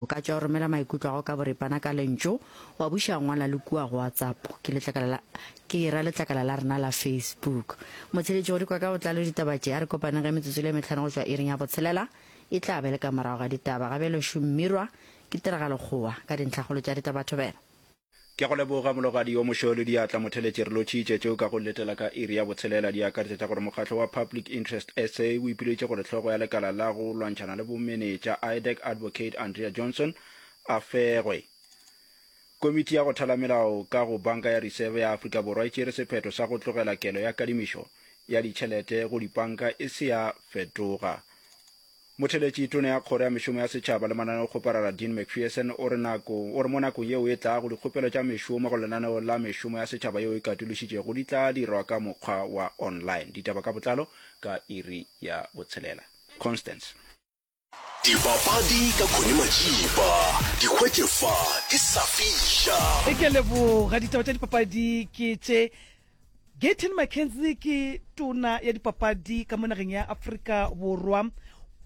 O ka tšwa o romela maikutlo a go ka boripana ka lentšu, wa buša ngwala le kua go WhatsApp, ke letlakala la, ke e ra letlakala la rena la Facebook. Motheeletši go di kwa ka botlalo ditaba tše, a re kopaneng ge metsotso e le e mehlano go tšwa iring ya botshelela, e tla be le ka morago ga ditaba. Gabjale Šummirwa ke tiragalokgowa ka dintlhakgolo tša ditabathobela. Ke a go leboga, Mologadi yo Mošweu-le diatla motheletši. Re lotšhitše tše o ka go letela ka iri ya botshelela. Di akaretša tša gore Mokgatlo wa Public Interest SA o ipiletše gore hlogo ya lekala la go lwantšhana le bomenetša, IDAC, Advocate Andrea Johnson, a fegwe. Komiti ya go thala melao ka go Banka ya Reserve ya Afrika Borwa e tšere sephetho sa go tlogela kelo ya kadimišo ya ditšhelete go dipanka e se ya fetoga. Motheeletši tona ya Kgoro ya Mešomo ya Setšhaba le Mananeokgoparara Dean McPherson o re nako, o re mo nakong yeo e tlago dikgopelo tša mešomo go lenaneo la mešomo ya setšhaba yeo e katološitšego di tla dirwa ka mokgwa wa online. Ditaba ka botlalo ka iri ya botshelela. Constance. Dipapadi ka Connie Matšipa, di hwetše fa di sa fiša. Ke a leboga. Ditaba tša dipapadi ke tše Gayton McKenzie ke tona ya dipapadi ka mo nageng ya Afrika Borwa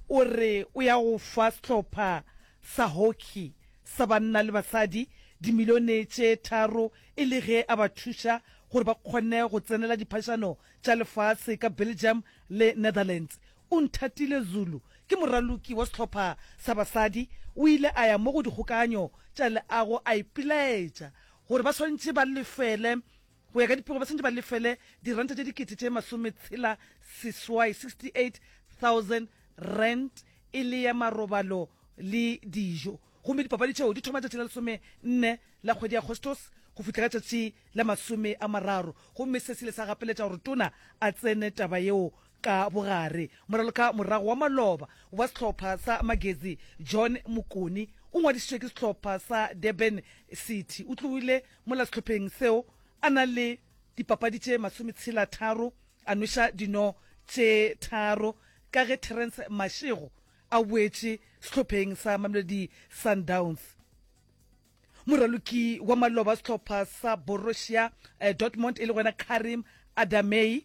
o re o ya go fa sehlopha sa hockey sa banna le basadi dimilione tše tharo e le ge a ba thuša gore ba kgone go tsenela diphašano tša lefase ka Belgium le Netherlands. Unthatile Zulu ke moraloki wa sehlopha sa basadi, o ile a ya mo go dikgokaganyo tša leago a ipelaetša gore ba swanetše ba lefele Go ya ka dipego ba santse ba lefele diranta tše dikete tše masometshela seswai 68000 rand e le ya marobalo le dijo gomme dipapadi tšeo di thoma tšatši la lesome nne la kgwedi ya agostos go fihla ka tšatši la masome a mararo gomme se sile sa gapeletša gore tona a tsene taba yeo ka bogare moraloka morago wa maloba wa sehlopha sa magezi john mokoni o ngwadišitšwe ke sehlopha sa durban city o tloile Mola sehlopheng seo a na le dipapadi tše masometshela-tharo, a nweša dino tše tharo ka ge Terrence Mashego a boetše sehlopheng sa Mamelodi Sundowns. Moraloki wa maloba sehlopha sa Borussia eh, Dortmund e le gona Karim Adamei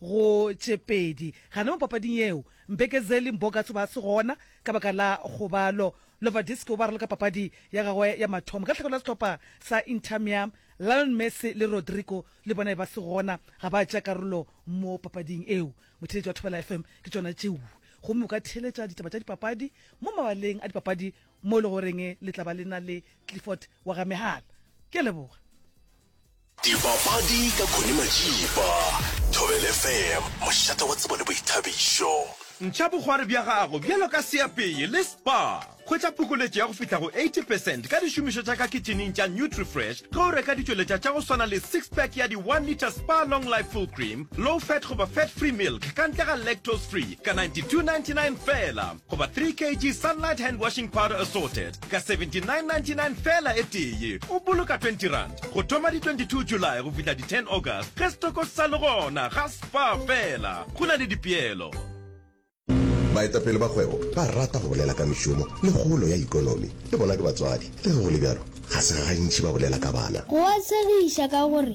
go tše pedi gane mo papading yeo. Mbekezeli Mbokatsho ba se gona ka baka la kgobalo. Lovadiski o ba raloka papadi ya gagwe ya mathomo ka lehlakore la sehlopha sa Inter Miam. Lionel Messi le Rodrigo le bona e ba se gona, ga ba tšea karolo mo papading eo. Motheeletši wa Thobela FM ke tšona tšeo. Gomme o ka theeletša ditaba tša dipapadi mo mabaleng a dipapadi mo e le goreng le tla ba le na le Clifford wa ga Mehala. Ke a leboga. Dipapadi ka Connie Majiba, Thobela FM, mošate wa tsebo le boithabišo. Ntšha bogwari bja gago bjalo ka seapeye le spa. Hwetša phokoletšo ya go fihla go 80 percent ka dišomišo tša ka kitšhineng tša Nutrifresh ge o reka ditšweletša tša go swana le six pack ya di one litre Spa Long Life Full Cream, Low Fat goba Fat Free Milk ka ntle ga lactose free ka 92.99 feela. Goba 3 kg Sunlight Hand Washing Powder Assorted ka 79.99 fela e tee. O boloka 20 rand go thoma di 22 July go fihla di 10 August ge setoko se sa le gona. Ga spa fela, go na le dipeelo. Baetapele ba kgwebo ba rata go bolela ka mešomo le kgolo ya ikonomi. Le bona ke batswadi, le ge go le bjalo, ga se gantši ba bolela ka bana. Go a tshegiša ka gore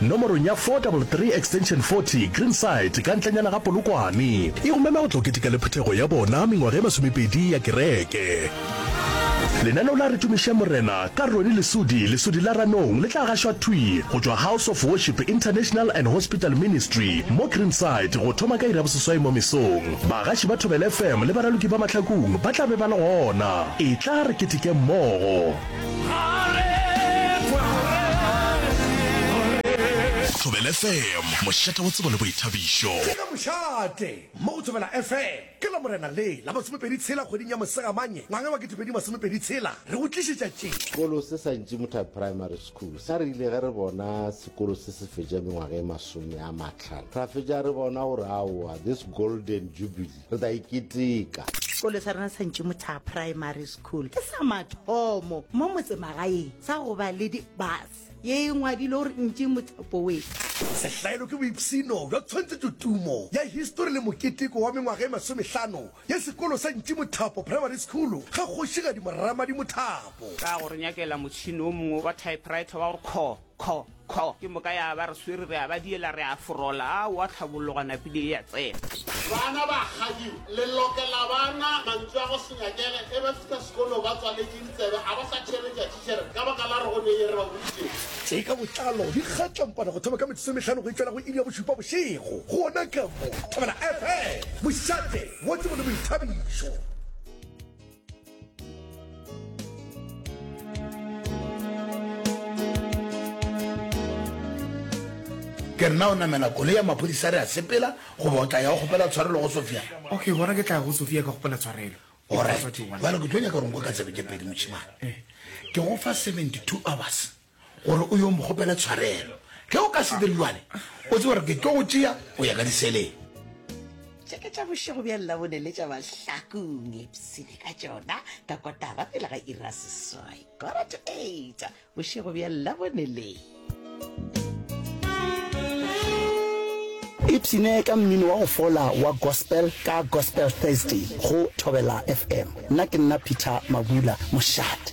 Nomorong ya 433 extension 40, Greenside, ka ntlenyana ga Polokwane, e go mema go tlo keteka le phuthego ya bona mengwaga e masomepedi ya kereke. Lenaneo la Re Tumišeng Morena ka Ronnie Lesudi, Lesudi la Ranong, le tla gašwa thwi go tšwa House of Worship International and Hospital Ministry mo Greenside go thoma ka iri ya boseswai mo mesong. Bagaši ba Thobela FM le baraloki ba Mahlakung ba tla be ba le gona. Etla re ketekeng mmogo. Thobela FM, mošate wa tsebo le boithabišo. Ke ge mošate mo go Thobela FM ke Lamorena le la masomepedi tshela kgweding ya Mosegamanye ngwaga wa ketepedi masomepedi tshela re go tlišetša tše. Sekolo se sa Ntšimutha Primary School sa rile ge re bona sekolo se se fetša mengwaga e masome a mahlano ra fetša re bona gore aowa this golden jubilee re tla e keteka. Sekolo sa rena sa Ntšimothaga Primary School ke sa mathomo mo motsemagaeng sa go ba le di-bus ye e ngwadile gore Ntšimotha Boys. Sehlaelo ke boipshino bja tshwantshetšotumo ya histori le moketeko wa mengwaga e masomehlano ya sekolo sa Ntšimothapo Primary School ga Kgošigadi Moramadi Mothapo. Ka go re nyakela motšhini o mongwe wa typewriter wa go kho, kho, Kho! Ke moka ya ba re swere, re a ba diela, re a forola, a oa tlhabologa, napile e a tsena. Bana ba kgadiwa, le lokela ba na mantšu a go se nyakege ge ba fihla sekolong, ba tswaletše ditsebe, ga ba sa theeletša thitšhere ka baka la re go ne ye re ba boditšego. Tše ka botlalo di kgatla mpana go thoma ka metsotso e mehlano go itšwela go iri ya bošupa bošego, gona ka mo Thobela FM, Mošate, Motse mo le Boithabišo. ke nna o namela kole ya maphodisa re a sepela goba o tla ya go kgopela tshwarelo go sofia okay gona ke tla go sofia ka kgopela tshwarelo orile ke tlo nyaka gore nko ka tsebe ke pedi mošimane eh. ke go fa 72 hours gore o yo mokgopela tshwarelo ge o ka se dire jwale o tse gore ke tlo go tšea go ya ka diseleng tšeke tša bošego bja llabone le tša bahlakong epsene ka tšona ka kotara pele ga ira seswai kora to eight bošego bja llabone le ipsene ka mmino wa go fola wa gospel ka gospel thursday go thobela fm nna ke nna peter mabula mošate